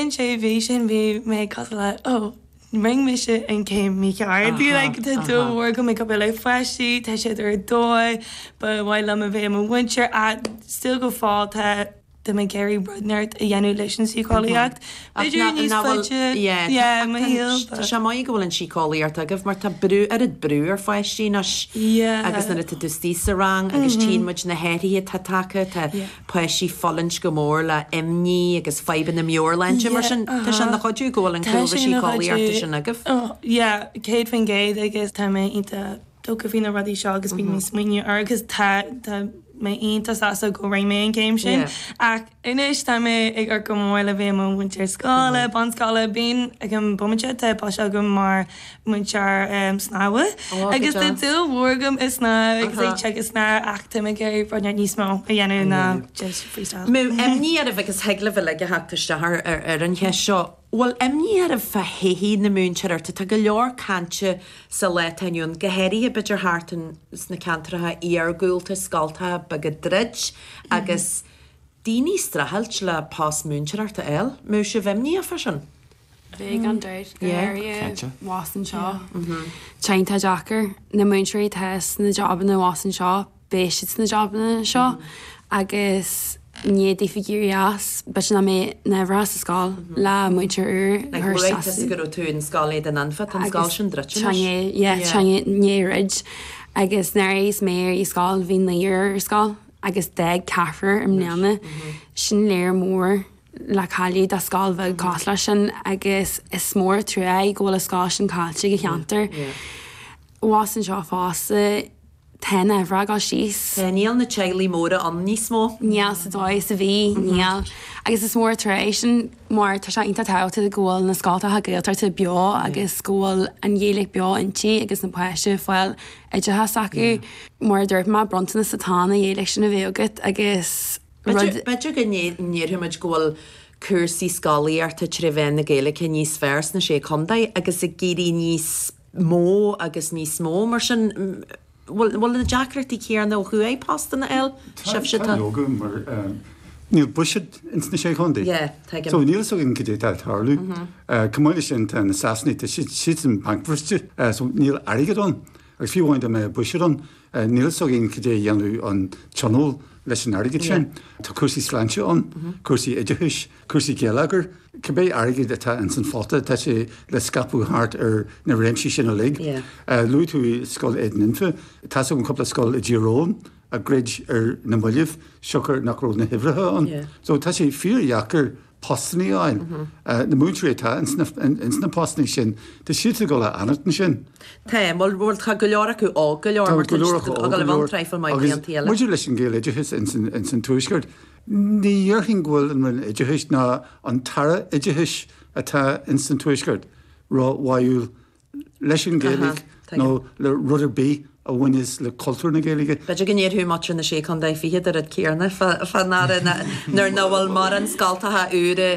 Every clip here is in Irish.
Sin sé bhí sin bhí mé cosúil le ó rinn mise an céim mícheart. Bhí like tá dúil mhór agam ag obair le páistí, tá siad ar dóigh, ba mhaith liom a bheith i mo mhúinteoir ach still go fóill tá mé ag iarraidh rud inteacht a dhéanamh leis an síceolaíocht. B'fhéidir níos faide i mo shaol but. Tá sé maith go bhfuil an síceolaíocht agaibh mar tá an oiread brú ar pháistí anois agus nuair atá tú suas sa rang agus tchíonn muid na hathruithe atá tagtha tá páistí fulaingt go mór le imní agus fadhbanna meabhairshláinte mar sin tá sé ina chuidiú go bhfuil an cúlra síceolaíochta sin agaibh. Yeah, 100% agus tá mé iontach tógtha faoi na rudaí seo agus bíonn mé ag smaoineamh air agus tá tá mé iontach sásta go rinn mé an céim sin ach anois tá mé ag dúil go mór le bheith i mo mhúinteoir scoile bunscoile bím ag an bomaite tá post agam mar múinteoir snámha. Agus tá dúil mhór agam i snámh agus i dtithe snámh ach táim ag iarraidh foirne níos mó a dhéanamh ná just freestyle. Bhfuil imní oraibh agus thig libh uilig a theacht isteach ar an cheist seo, bhfuil imní oraibh fá thodhchaí na múinteoireachta? Tá go leor cainte sa lá atá inniu ann, go háirithe b'fhéidir thart in sna ceantracha iargúlta, scoltacha beaga ag druid agus daoine streachailt le post múinteoireacht a fháil. Bhfuil sibh imníoch fá sin? Bheadh gan dabht, go háirithe abhus anseo. Tá iontach deacair. Na múinteoirí atá sna jabanna abhus anseo, beidh siad sna jabanna anseo agus ní bheidh siad ag éirí as. B'ait ná mé ná a bheith sa scoil le múinteoir úr. Ag labhairt as a go raibh tú in Scoil Éadain Anfa, tá an scoil sin druidte anois. Tá, yeah, tá i ndiaidh druid. Agus nuair a bhí mise ar scoil bhí naoi ar scoil agus d'fhág ceathrar i mbliana. Sin lear mór. le cailleadh do scoil bheag cosúil leis sin agus is mór an trua é go bhfuil an scoil sin caillte ag an cheantar. Abhus anseo fosta, tá na huimhreacha síos. Tá Níl na teaghlaigh móra ann níos mó. Níl sa dóigh is a bhí. Níl. Agus is mór an trua é sin mar tá sé iontach tábhachtach go bhfuil na scoltacha Gaeltachta beo agus go bhfuil an Ghaeilge beo iontu agus na páistí ag fáil oideachas acu. Mar a dúirt mé, bronntanas atá ann an Ghaeilge sin a bheith agat agus. Rud. B'fhéidir go ndéarfadh muid go bhfuil cúrsaí scolaíochta trí mheán na Gaeilge níos fearr sna Sé Chontae agus ag éirí níos mó agus níos mó mar sin. Bhfuil na deacrachtaí céanna ó thuaidh postanna a fháil? Sibhse? Tá. Tá leoga mar níl buiséad ins na Sé Chontae. Yeah, tuigim. So níl fhios againn cad é atá ag tarlú. Chomh maith leis sin tá na Sasanaigh, tá siad siadsan bancbhriste so níl airgead ann. Agus fiú amháin dá mbeadh buiséad ann, níl fhios againn cad é a dhéanfadh an Tionól leis an airgead sin. Tá cúrsaí sláinte ann, cúrsaí oideachais, cúrsaí geilleagair. Cibé airgead atá ins an phota, tá sé le scaipeadh thart ar na réimsí sin uilig. Luaigh tú Scoil Éadain Anfa. Tá's agam cúpla scoil i dTír Eoghain a dhruid ar na mallaibh siocair nach raibh na huimhreacha ann. So tá sé fíor dheacair postannaí fháil. Na múinteoirí atá ins na postannaí sin, tá siadsa ag dul a fhanacht ansin. Tá, bhuel, tá go leor acu óg go leor, mar tá siad ag dul a bheith ann traidhfil maith blianta eile. Agus maidir leis an Ghaeloideachas ins an Tuaisceart, ní dhéarfainn go bhfuil an Roinn Oideachais ná an tAire Oideachais atá ins an Tuaisceart ró-bháúil leis an Ghaeilge nó le rud ar bith a bhaineas le cultúr na Gaeilge. B'fhéidir go ndéarfadh muintir na Sé Chontae Fichead an rud céanna fán Aire nuair ná bhfuil mórán scoltacha úra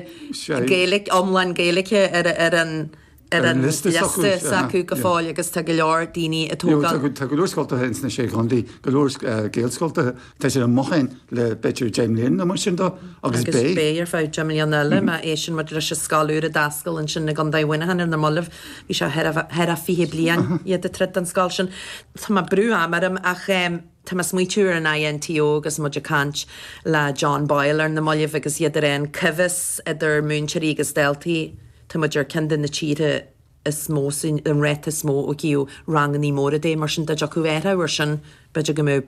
Gaeilge, iomlán Gaeilge ar an liosta s'acu go fóill agus tá go leor daoine a tógáil. Tá go leor scoltacha ins na Sé Chontae, go leor Gaelscoltacha. Tá sé i mo shuim le b'fhéidir deich mbliana nó mar sin dó, agus beidh. Beidh ar feadh deich mbliana eile má éisteann muid leis an scoil úr a d'oscail ansin i gContae Mhuineacháin ar na mallaibh. Bhí sé thar a fiche bliain iad ag troid don scoil sin. Tá mé ag brú am orm ach tá mé ag smaoitiú ar an INTO agus muid ag caint le John Boyle ar na mallaibh agus iad ar aon coimheas idir múinteoirí agus daltaí. Tá muid ar ceann de na tíortha is mó sa an ráta is mó ó thaobh rangannaí móra de, mar sin dá dtiocfadh athrú ar sin b'fhéidir go mbeadh.